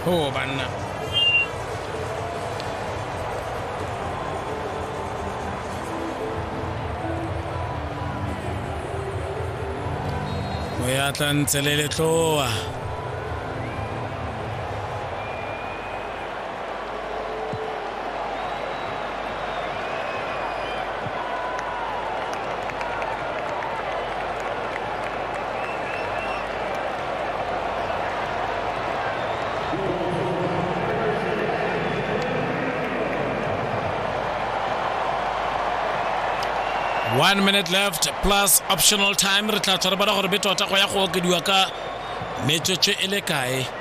Oh, banna. O ya tla ntse le letloa. one minute left plus optional time re tla tshwara bana gore be tota go ya go okediwa ka metsotso e le kae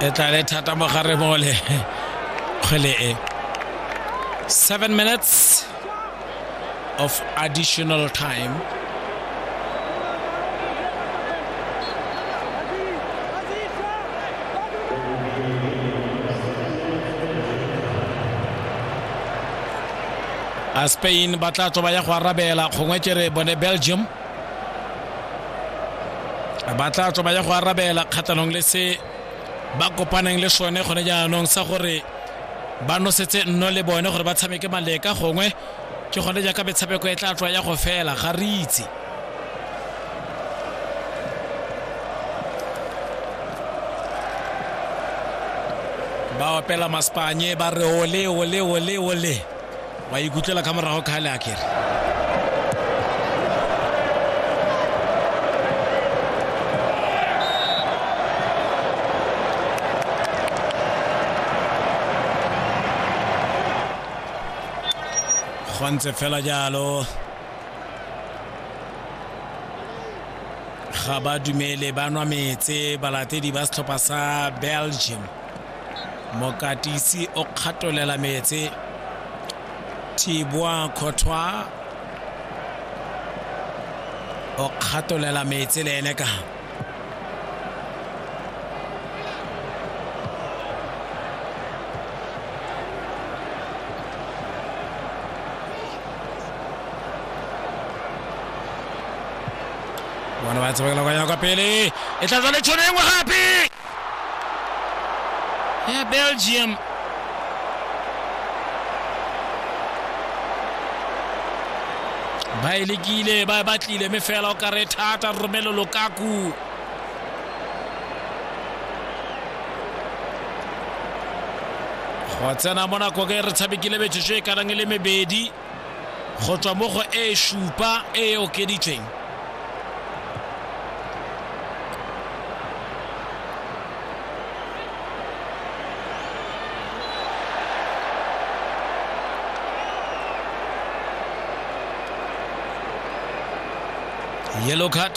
e tla le thata mo gare mole kgwele e seven minutes of additional time a spain ba tla tswa ba ya go arabela gongwe ke re bone belgium ba tla tswa ba ya go arabela kgatlhanong le se ba kopaneng le sone gone jaanong sa gore ba nosetse nno le bone gore ba tshameke maleka gongwe ke gone jaaka metshameko e tla tswa ya go fela ga re itse ba opela maspanye ba re ole ole ole ole wa ikutlela ka morago kgale a kere go ntse fela jalo ga ba dumele ba nwa metse balatedi ba setlhopha sa belgium mokatisi o kgatolela metse thibwa kgothwa o kgatolela metse le ene ka bona ba tsebakela kwa ya kwa pele e tla tswa le tšhono e nngwe gape ya belgium ba e lekile ba e batlile mme fela o kare thata romelo lokaku go tsena mo nako ke re tshabekile metsotso e kanang e le mebedi go tswa mo go e supa e e okeditsweng yellow card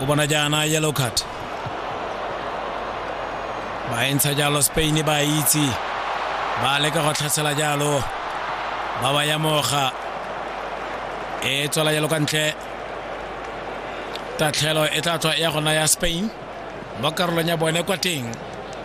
o bona jaana yellow card ba e ntsha jalo spain ba itse ba leka go tlhasela jalo ba ba ya moga e tswela jalo ka ntle tatlhelo e tla tswa ya gona ya spain mo karolong ya bone kwa teng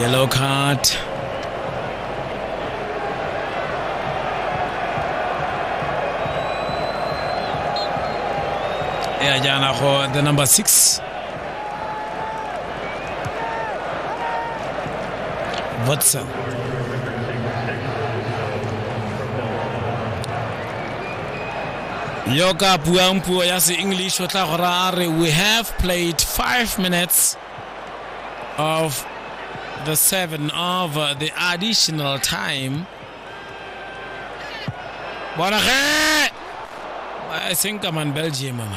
Yellow card. ya jaana go the number six watson yo ka buang puo ya se-english o tla go raya re we have played five minutes of the seven of the additional time bona ge e seng ka man belgium man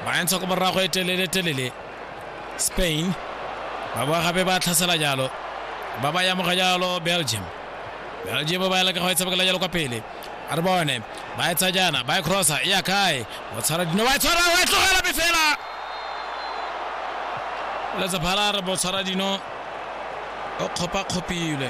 ba entsha ko borago e telele telele spain ba boa gape ba tlhasela jalo ba ba yamoga jalo belgium belgium ba ya leka go e tshabakela jalo kwa pele a re bone ba etsa jaana ba e crossa e ya kae o tshwara dino wa e tshwara wa e tlogela be fela letsaphala re bo tshwara dino o kgopakgopilwe